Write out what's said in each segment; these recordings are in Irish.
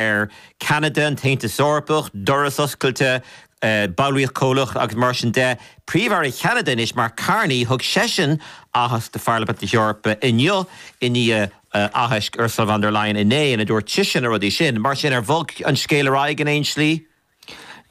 ar Ceanada, an tAontas Eorpach, doras oscailte, ballraíocht comhlach agus mar sin de. Príomh-Aire Cheanada anois, Mark Carney, thug seisean aitheasc do Pharlaimint na hEorpa inniu i ndiaidh aithisc Ursula von der Leyen inné ina dúirt sise na rudaí sin. Mar sin, ar bhog an scéal ar aghaidh in aon slí?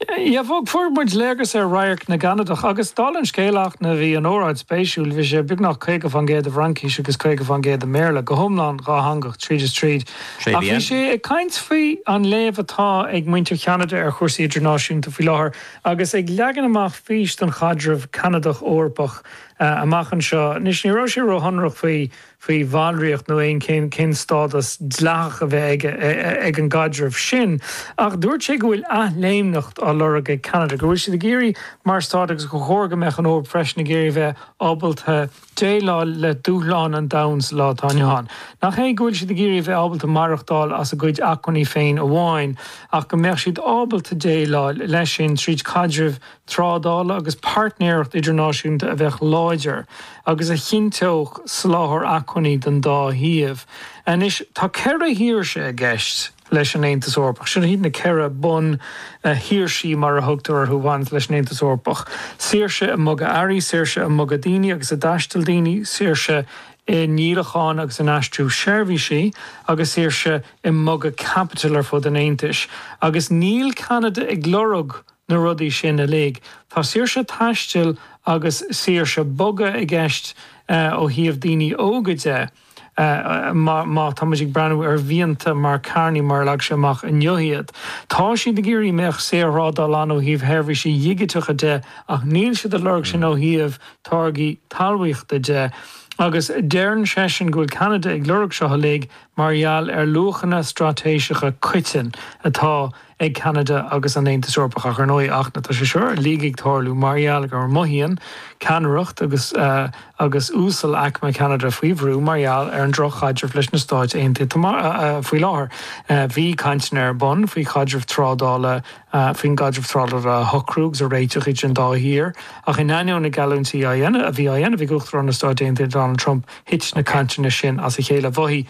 Á bhog, fuair muid léargas ar radharc na gCanadach agus, dála an scéil, ach na bhí an óráid spéisiúil, bhí sé beagnach 50% i bhFraincís agus 50% i mBéarla, go hiomlán dhátheangach tríd is tríd. Ach bhí sé ag caint faoi an léamh atá ag muintir Cheanada ar chúrsaí idirnáisiúnta faoi láthair agus ag leagan amach fís don chaidreamh Canadach-Eorpach amach anseo. Anois, ní raibh sé ró-shonrach faoi. faoi bhallraíocht nó aon cén stádas dleathach a bheadh ag an gcaidreamh sin, ach dúirt sé go bhfuil athléimneacht á lorg ag Ceanada, go bhfuil siad ag iarraidh mar stát agus gur chóir go mbeadh an Eoraip freisin ag iarraidh a bheith ábalta déileáil le dúshláin an domhain sa lá atá inniu ann. Nach é go bhfuil siad ag iarraidh a bheith ábalta maireachtáil as a gcuid acmhainní féin amháin ach go mbeadh siad ábalta déileáil leis sin tríd caidreamh trádála agus páirtnéireacht idirnáisiúnta a bheadh láidir agus a chinnteodh soláthar acmhainní don dá thaobh. Anois tá ceithre shaoirse i gceist leis an Aontas Eorpach. Sin iad na ceithre bun shaoirsí mar a thugtar orthu a bhaineas leis an Aontas Eorpach. Saoirse i mbogadh earraí, saoirse i mbogadh daoine agus i dtaisteal daoine, saoirse i ndíolachán agus in aistriú seirbhísí agus saoirse i mbogadh caipitil ar fud an Aontais. Agus níl Ceanada ag lorg na rudaí sin uilig. Tá saoirse taistil agus saoirse bogadh i gceist ó thaobh daoine óga de. Má tá muid ag breathnú ar mhianta Mark Carney mar a leag sé amach inniu iad, tá siad ag iarraidh go mbeadh saorthrádáil ann ó thaobh sheirbhísí digiteacha de ach níl siad ag lorg sin ó thaobh táirgí talmhaíochta de. Agus deireann seisean go bhfuil Ceanada ag lorg seo uilig mar gheall ar luachanna straitéiseacha coiteanna atá ag Ceanada agus an Aontas Eorpach ach ar ndóigh ach tá sé seo uilig ag tarlú mar gheall go mothaíonn ceannaireacht agus uasalaicme Cheanada faoi bhrú mar gheall ar an drochchaidreamh leis na Stáit Aontaithe faoi láthair. Bhí cainteanna ar bun faoi chaidreamh trádála faoin gcaidreamh trádála a shocrú agus a réiteach idir an dá thír ach in ainneoin na geallúintí a bhí á dhéanamh ag Uachtarán na Stáit Aontaithe Donald Trump thit na cainteanna sin as a chéile. Mhothaigh.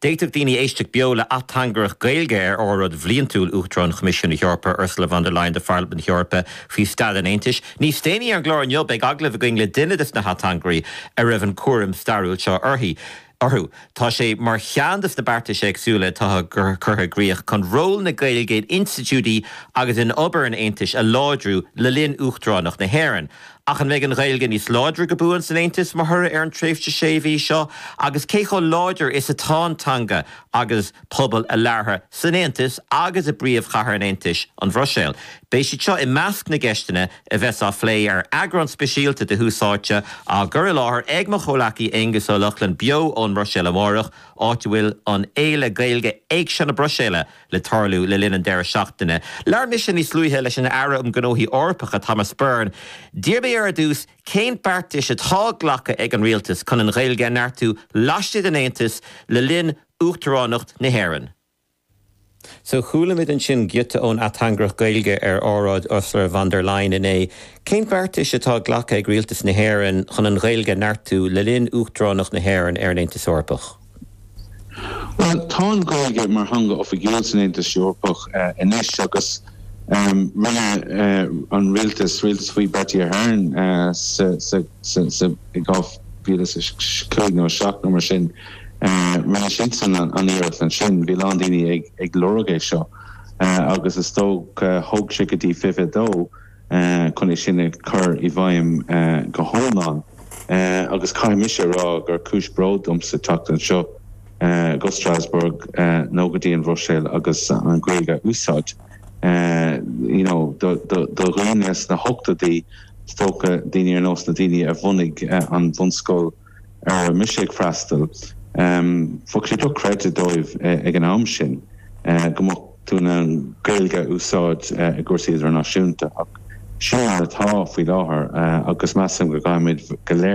D'fhéadfadh daoine éisteacht beo le hateangaireacht Gaeilge ar óráid bhliantúil Uachtarán Choimisiún na hEorpa, Ursula von der Leyen do Pharlaimint na hEorpa faoi staid an Aontais. Níos déanaí ar an gclár inniu beidh agallamh againn le duine des na hateangairí a raibh an cúram stairiúil seo uirthi, orthu. Tá sé mar cheann des na beartais éagsúla atá curtha i gcríoch chun ról na Gaeilge in institiúdí agus in obair an Aontais a láidriú le linn Uachtaránacht na hÉireann. Ach an mbeidh an Ghaeilge níos láidre go buan san Aontas mar thoradh ar an tréimhse sé mhí seo agus cé chomh láidir is atá an teanga agus pobal a labhartha san Aontas agus i bpríomhchathair an Aontais, an Bhruiséil? Beidh siad seo i measc na gceisteanna a bheas á phlé ar eagrán speisialta de Thús Áite á gcur i láthair ag mo chomhleacaí Aonghus Ó Lochlainn beo ón mBruiséil amárach, áit a bhfuil an fhéile Gaeilge Éigse na Bruiséile. le tarlú le linn an deireadh seachtaine. Labhair mise níos luaithe leis an Aire um Ghnóthaí Eorpacha, Thomas Byrne. D'iarr mé air ar dtús cén beartais atá glactha ag an Rialtas chun an Ghaeilge a neartú laistigh den Aontas le linn Uachtaránacht na hÉireann. So, chualamid ansin giota ón ateangaireacht Gaeilge ar óráid Ursula von der Leyen inné. Cén beartais atá glactha ag Rialtas na hÉireann chun an Ghaeilge a neartú le linn Uachtaránacht na hÉireann ar an Aontas Eorpach? Bhuel, tá an Ghaeilge mar theanga oifigiúil san Aontas Eorpach anois agus rinne an rialtas, rialtas faoi Bertie Ahern sa 2005 nó 7 nó mar sin, rinne siadsan an iarracht ansin, bhí a lán daoine ag lorg é seo agus is dócha thóg sé go dtí 22. chun é sin a chur i bhfeidhm go hiomlán agus caithfidh mise a rá gur cúis bróid domsa teacht anseo go Strasbourg nó go dtí an Bhruiséil agus an Ghaeilge a úsáid you know do dhaoine sna hochtóidí is dócha, daoine ar nós na daoine a bhunaigh an bhunscoil. a raibh mise ag freastal, bheadh sé dochreidte dóibh ag an am sin go mbeadh tú in ann Gaeilge a úsáid i gcúrsaí idirnáisiúnta ach sin mar atá faoi láthair agus measaim go gcaithfimid go léir